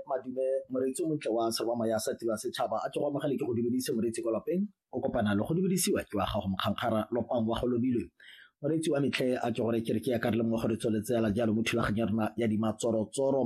madume moreetsi o montle wa serwama ya sa tira setšhaba a tlogo amogele ke go dumedise moreetsi kwa lapeng o kopana le go dumedisiwa ke wa gago mokgankgara lopang wa go lomilwe moreetsi wa metlhe a ke gore kereke ya kareleng wa gore tsweletsela jalo mo thulaganyo ya rona ya dimatsorotsoro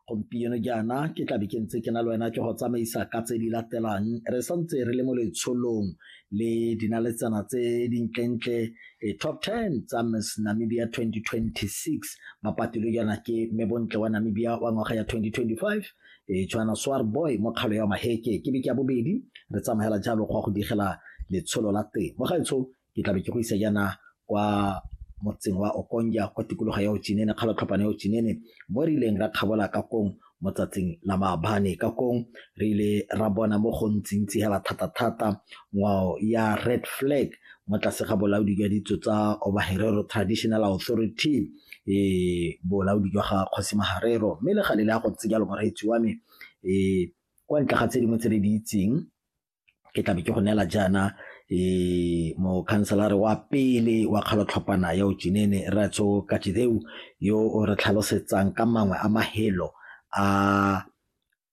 gompieno jaana ke tlabe ke ntse ke na le wena ke go tsamaisa ka tse di latelang re santse re le mo letsholong le dinaletsana tse dintlentle Di-top ten tsa Miss Namibia 2026 ba patilwe jaana ke mme bontle wa Namibia wa ngwaga ya 2025 e Joanna Swarboy mo kgalo ya Maheke ke beke ya bobedi re tsamagela jalo go ya go digela letsholo la teng mo gaetsho ke tlabe ke go isa jaana kwa motseng wa Okonja kwa tikologo ya Otsinene kgalo tlhopana ya Otsinene mo re ileng ra kgabola ka kong mo tsatsing la maabane ka kong re ile ra bona mo go ntsintsi hela thata-thata ngwao ya red flag mo tlase ga bolaodi jwa ditso tsa obaherero traditional authority e bolaodi jwa ga kgosi maharero mme le gale le ya go ntse jalo moreetsi wa me e kwa ntle ga tse dingwe tse re di itseng ke tlabe ke go neela jaana e mokhanselare wa pele wa kgalotlhopana ya ojinene ratso katideu yo o re tlhalosetsang ka mangwe a mahelo a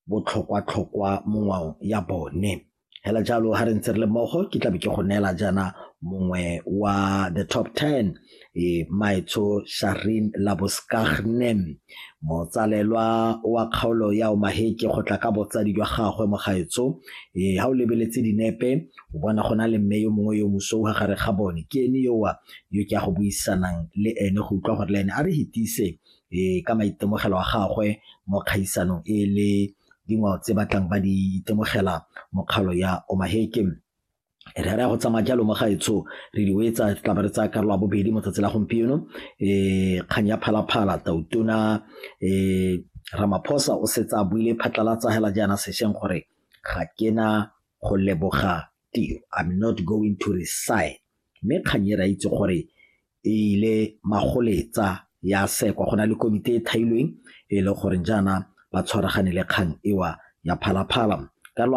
botlhokwa-tlhokwa mo ngwao ya bone hela jalo ha re ntse re le mmogo ke tlabe ke go neela jaana mongwe wa the top 10 e Maetsho Sharin Laboskagnem motsalelwa wa kgaolo ya Omaheke go tla ka botsadi jwa gagwe mo gaetsho e ha o lebeletse dinepe o bona go na le mme yo mongwe yo moso wa gare ga bone ke ene yowa yo ke a go buisanang le ene go utlwa gore le ene a re hitise e ka maitemogelo a gagwe mo kgaisanong e le dingwao tse batlang ba di itemogela mokgalo ya Omaheke re ra go tsamaya jalo mo gaetsho re di wetsa tla ba re tsaya karolo ya bobedi mo tsatsi la gompieno um kgang ya phalaphala tautona um ramaphosa o setse a buile phatlalatsa hela jaana sešweng gore ga ke na go leboga tiro i'm not going to resign mme kgang e re a itse gore e ile magoletsa ya sekwa go na le komiti e thailweng e le goreng jaana ba tshwaragane le kgang ewa ya phalaphala karolo